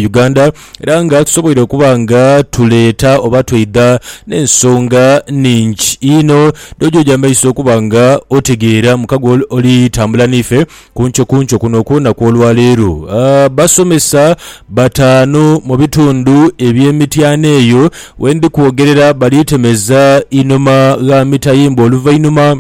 Uganda era nga tusoboire okuba nga tuleeta oba tweidha n'ensonga ningi inho dh'ojoja amaiso okuba nga otegeera muka gwe oli tambula n'ife kunkyo kunkyo kuno okw'olunaku olwaleero. Basomesa bataanu mu bitundu eby'e Mityana eyo wendi kwogerera bali temeza inhuma gha mitayimbwa oluvainhuma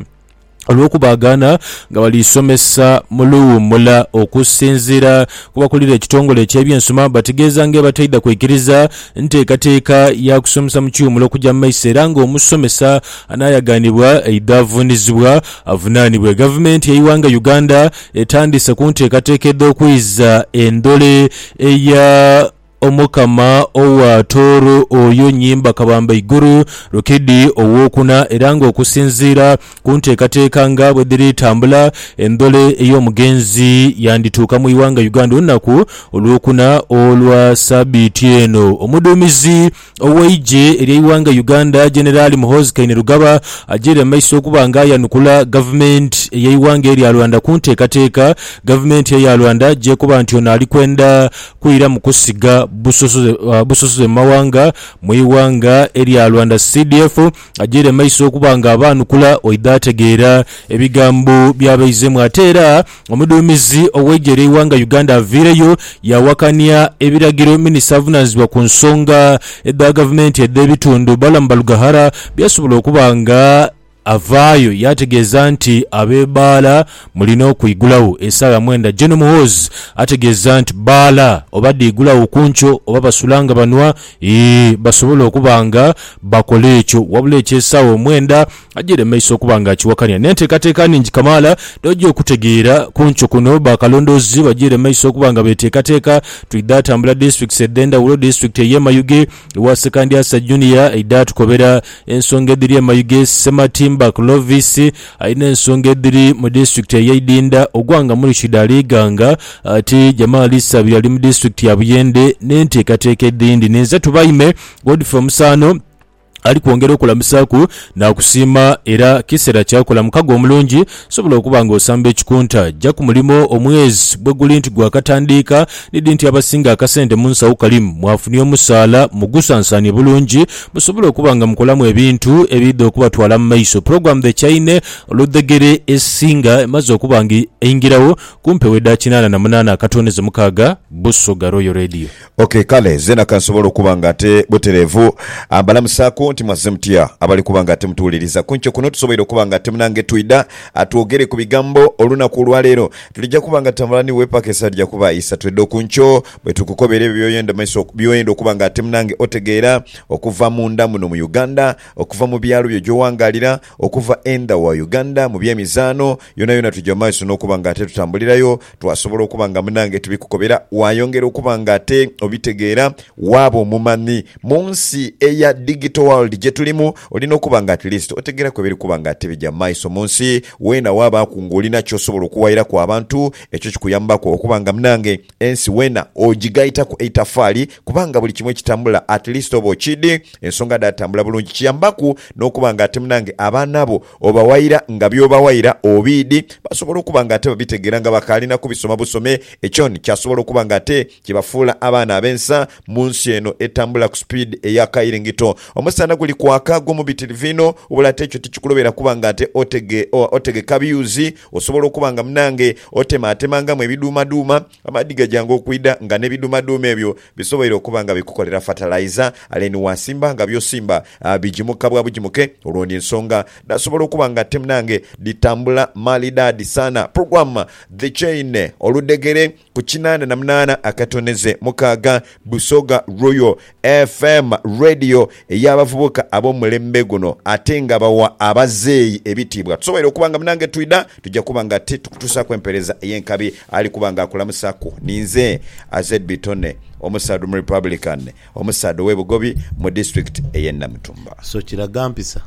olw'okubaagana nga bali somesa mu luwuumula. Okusinziira ku bakulira ekitongole eky'ebyensoma, bategeeza ng'ebataidha kwikiriza nteekateeka ya kusomesa mu kiwumulo okugya mu maiso era ng'omusomesa anaayaganibwa aidha avuunizibwa avunaanibwe. Gavumenti y'eighanga Uganda etandiise ku nteekateeka edh'okwiza endhole eya. Omukama owa Tooro oyo nyimba kabamba igulu, Rukidi owokuna, era nga okusinziira ku nteekateeka nga bwe dhiri tambula, endhole ey'omugenzi yandituuka mu ighanga Uganda olunaku olwokuna olwa sabiiti eno. Omuduumizi Ow'eigye ery'eighanga Uganda Generali Muhoozi Kainerugaba agyeire mu maiso okuba nga ayanukula gavumenti ey'eighanga erya Rwanda ku nteekateeka gavumenti eya Rwanda gy'ekoba nti ono ali kwenda kwiramu kusiga busosoze mu mawanga mu ighanga erya Rwanda. CDF agyeire mu maiso okuba nga abaanukula oidha ategeera ebigambo bya baizemu ate era Omuduumizi ow'eigye ly'eighanga Uganda avaireyo yaawakania ebiragiro minisita avunaanyizibwa ku nsonga edha gavumenti edh'ebitundu, Balaam Barugahara byasobola okuba nga avaayo yaategeeza nti ab'ebaala mulina okwigulawo esaawa mwenda. Gen Muhoozi ategeeza nti bbaala oba dhiigulawo ku nkyo oba basula nga banwa, ii basobola okuba nga bakola ekyo wabula eky'esaawa omwenda, Agyire mu maiso okuba nga akiwakanya n'enteekateeka nhingi kamaala dh'oja okutegeera ku nkyo kuno. Bakalondoozi bagyire mu maiso okuba nga beteekateeka twidha tambula disitulikiti edh'endhawulo. Disitulikiti ey'e Mayuge ewa Ssekandyasa Junior eidha tukobera ensonga edhiri e Mayuge. Ssematimba Clovis alina ensonga edhiri mu disitulikiti ey'e Idinda. Ogwanga Murishid Alighanga ati Jamali Ssabiryo ali mu disitulikiti ya Buyende n'enteekateeka edhindi. Ninze Tubaime Godfrey Omusaano. ali kwongera okulamusaaku naakusiima era kiseera kya kola mukago omulungi. Sobola okuba nga osamba ekikunta. Ja ku mulimo omwezi bwe guli nti gwakatandiika ni dhi nti abasinga akasente mu nsawo kali mwafunye omusaala mugusansaanie bulungi musobole okuba nga mukolamu ebintu ebiidha okubatwala mu maiso. Pulogulaamu The Chaine Oludhegere esinga emaze okuba nga eingirawo ku mpewo edha kinaana na munaana akatooneze mukaaga. Busoga Royal Radio. Ok, kale zeena ka nsobole okuba nga ate butereevu. Mbalamusaaku nti mwazze mutya. Abali kuba nga ate mutuwuliriza ku nkyo kuno, tusoboire okuba nga ate munange twidha twogere ku bigambo olunaku olwa leero. Tulija kuba nga tutambula ni we paka esaa lija kuba isatu edho ku nkyo, bwe tukukobera ebyo by'oyenda maiso, by'oyenda okuba nga ate munange otegeera okuva munda muno mu Uganda, okuva mu byalo byo gy'owangaalira, okuva endha wa Uganda, mu by'emizaano, yonayona twija mu maiso n'okuba nga ate tutambulirayo Twasobola okuba nga munange tibikukobera, waayongera okuba nga ate obitegeera, waaba omumanhi. Mu nsi eya digital world gye tulimu, olina okuba nga at least otegeeraku ebiri kuba nga ate bigya mu maiso mu nsi. Weena waabaaku ng'olina ky'osobola okuwairaku abantu, ekyo kikuyambaku okuba nga munange ensi weena ogigaitaku eitafaali kubanga buli kimu ekitambula at least oba okiidhi ensonga dhaatambula bulungi. Kiyambaku n'okuba nga ate munange abaana bo Obawayira nga by'obawayira obiidhi, basobola okuba nga ate babitegeera nga bakaali na kubisoma busome. Ekyoni kyasobola okuba nga ate kibafuula abaana ab'ensa mu nsi eno etambula ku sipiidi eya kairingito. Omusana guli kwaka gumu bitirivu inho, wabula ate ekyo tikikulobera kuba nga ate otege, otegeka biyuzi. Osobola okuba nga munange otemaatemangamu ebiduumaduuma. Amaadhi gajanga okwidha nga n'ebidhumadhuuma ebyo bisoboire okuba nga bikukolera fatalaiza, ale ni waasimba nga by'osimba bijimuka bwa bujimuke. Olwo ni nsonga dhasobola okuba nga te munange dhitambula maalidaadi sana. Program The Chain, oludhegere ku kinaana na munaana akatoneze mukaaga, Busoga Royal FM Radio ey'abavubuka ab'omulembe guno ate nga bawa abazeeyi ebitiibwa. Tusoboire okuba nga munange twidha tuja kuba nga titukutuusaaku empeereza ey'enkabi. Ali kuba nga akulamusaaku ninze Azedby Tony, omusaadha Omurepublican, omusaadha ow'e Bugobi mu disitulikiti ey'e Namutumba. So kiraga mpisa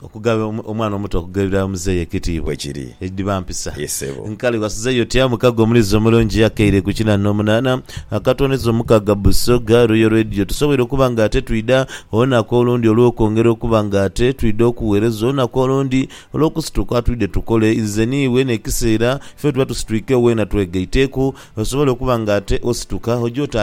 Okuga omwana omuto okugherera muzeeyi ekitiibwa. Bwe kiri. Edhiba mpisa. Ye sebo. Nkale wasuzeeyo otya mukago omuliiza omulungi akeire ku kina n'omunaana akatwoneza omukaga Busoga Royal Radio? Tusoboire okuba nga ate twidha olunaku olundi olw'okwongera okuba nga ate twidha okugheereza olunaku olundi olw'okusituka twidhe tukole nze n'iwe n'ekiseera ffe wetuba tusitwikewo weena twegaiteeku osobole okuba nga ate osituka oje otandike